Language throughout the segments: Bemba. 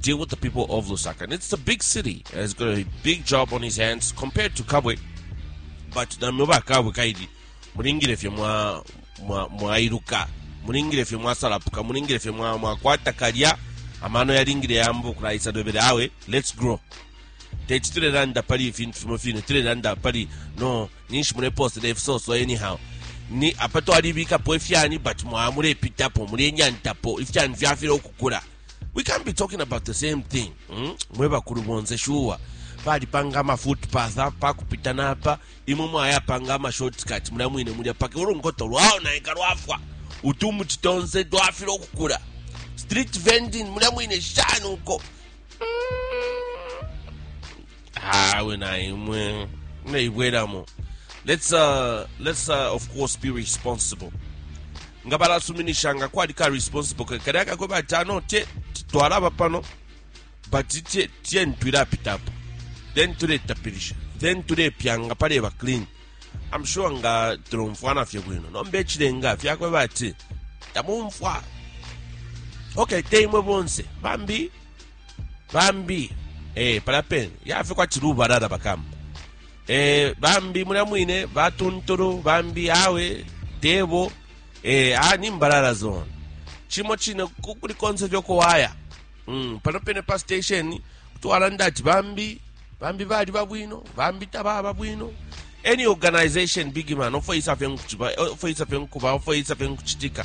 deal with the people of Lusaka. And it's a big city. And he's got a big job on his hands compared to Kabwe. But namyoba Kabwe kaidi. Mulingire fye mwa mwa mwairuka. Mulingire fye mwasalapuka. Mulingire fye mwa mwakwata kalya. Amano yalingire yambo kulaisa dobere awe. Let's grow. Teti tulelanda pali ifintu fimo fine. Tulelanda pali no ninshi muleposela ifisoso anyhow ni apa twalibikapo ifyani but mwaya mulepitapo mulenyantapo ifyani fyafile ukukula we can't be talking about the same thing mm? mwe bakulu bonse shuwa balipanga amafootpath apa kupita napa imwe mwayapanga amashortcut mulya mwine mulya paka ulunkoto lwaonaika lwafwa utumuti tonse twafile ukukula street vending mulya mwine shani uko mm. awe na imwe muleibwelamo let's, uh, let's uh, of course be responsible nga balasuminisha nga kwali ka responsible ka- kalya kakwe bati ano te twalaba pano but tie- tie ntwilapitapo then tuletapilisha then tulepyanga paleba clean i'm sure nga tulomfwana fye bwino nomba ekilenga fyakwe bati tamumfwa okay teimwe bonse bambi bambi eh, palapen yafe kwati lubalala bakamba eh, bambi mulya mwine batuntulu bambi awe debo eh, a ni mbalala zone chimo chine ku- kuli konse vyokuwaya mm, pano pene pa station kutwalanda ati bambi bambi bali babwino bambi tababa bwino any organization big man ofoyisa fye nkuchiba ofoyisa fye nkuba ofoyisa fye nkuchitika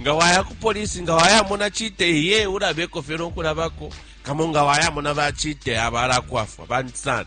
nga waya ku polisi nga wayamona chite ye ulabeko fye nokulabako kamo nga wayamona bachite abalakwafwa bantu sana